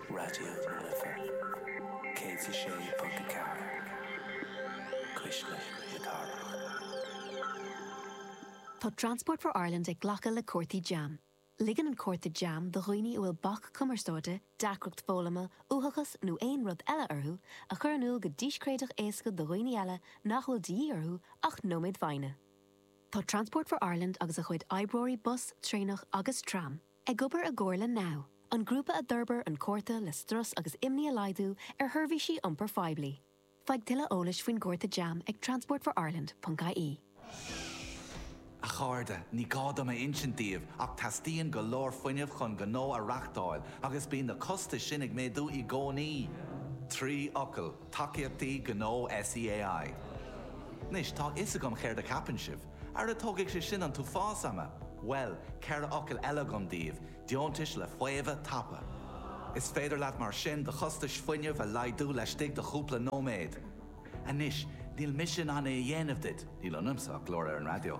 Raidió na Life 106.4, cuisle na cathrach. Tá Transport for Ireland ag glacadh le cártaí jam. Ligeann an cárta jam do dhaoine a bhfuil bac cumarsáide, deacracht foghlama, uathachas nó aon rud eile orthu a chur in iúl go díscréideach éasca do dhaoine eile nach bhfuil de dhíth orthu ach nóiméad foighne. Tá Transport for Ireland agus a chuid oibreoirí bus, traenach agus tram, Ag obair i gcomhar le NOW, an grúpa a d'fhorbair an cárta le strus agus imní a laghdú ar sheirbhísí iompair phoiblí. Faigh tuilleadh eolais faoin gcárta jam ag transportforireland.ie. A chairde, ní gá dom a insint daoibh ach teastaíonn go leor fuinnimh chun gnó a reáchtáil agus bíonn na costais sin ag méadú i gcónaí! Trí fhocal. Tacaíochtaí Gnó SEAI. Anois, tá a fhios agam céard a cheapann sibh. Ara tógfaidh sé sin an t-uafás ama! Bhuel, ceithre fhocal eile agam daoibh, deontais le faomhadh tapa. Is féidir leat mar sin do chostais fuinnimh a laghdú laistigh de chúpla nóiméad. Anois, níl mise in ann é a dhéanamh duit, níl ionamsa ach glór ar an raidió.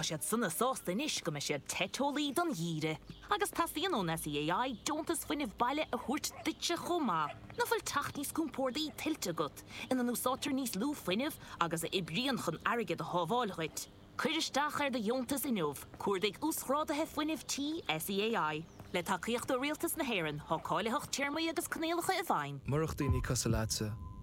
Tá siad sona sásta anois go mbeidh siad te teolaí don gheimhreadh. Agus teastaíonn ón SEAI deontas fuinnimh baile a thabhairt duitse chomh maith. Nach bhfuil teach níos compórdaí tuillte agat, ina n-úsáidtear níos lú fuinnimh agus a oibríonn chun airgead a shábháil dhuit? Cuir isteach ar do dheontas inniu, cuardaigh Uasghrádaithe Fuinnimh Tí SEAI. Le tacaíocht ó Rialtas na hÉireann, tá cáilitheacht téarmaí agus coinníollacha i bhfeidhm. Murach daoine cosúil leatsa.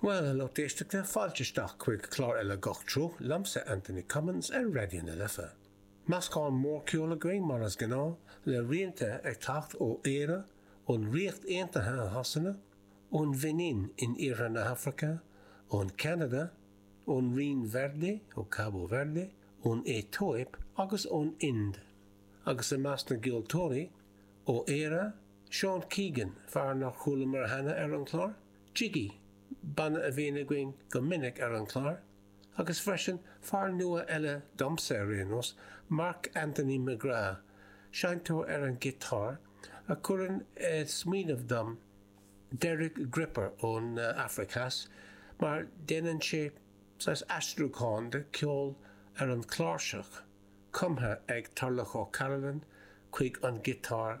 Bhuel, a lucht éisteachta, fáilte isteach chuig clár eile Gach Treo liomsa, Anthony Cummins ar Raidió na Life. Meascán mór ceoil againn, mar is gnáth, le rianta ag teacht ó Éire, ón Ríocht Aontaithe i Shasana, ón Bheinin in Iarthar na hAfraice, ó Cheanada, ón Rinn Verde, ó Cabo Verde, ón Aetóip agus ón Ind. Agus i measc na gceoltóirí ó Éire, Seán Keegan, fear nár chualamar cheana ar an chlár, Jiggy, banna a bhíonn againn go minic ar an chlár, agus freisin fear nua eile domsa ar aon nós, Mark Anthony McGrath, seinnteoir ar an ghiotár, a chuireann i smaoineamh dom Derek Gripper ón Afraic Theas, mar déanann sé saghas aistriúcháin de cheol ar an chláirseach, cumtha ag Turlough O'Carolan chuig an ghiotár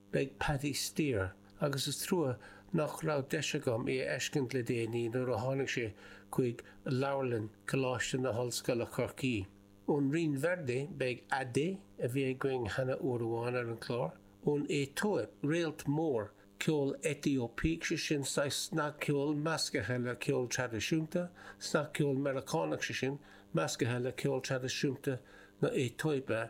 Beidh Paddy Steer, agus is trua nach raibh deis agam é a fheiscint le déanaí nuair a tháinig sé chuig Leabharlann Coláiste na hOllscoile Chorcaí. Ón Rinn Verde beidh Ade, a bhí againn cheana uair amháin ar an chlár, ón Aetóip, réalt mór ceoil Aetóipigh, sé sin saghas snagcheoil meascaithe le ceol traidisiúnta, snagcheol Meiriceánach sé sin meascaithe le ceol traidisiúnta na Aetóipe.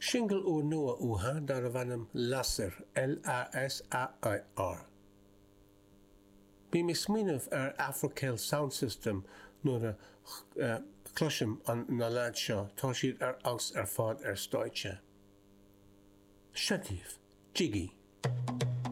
Singil úrnua uatha darbh ainm Lasair, L-a-s-a-i-r. Bím ag smaoineamh ar Afro Celt Sound System nuair a chloisim na leaids seo, tá siad ar fheabhas ar fad ar stáitse. Seo daoibh, Jiggy.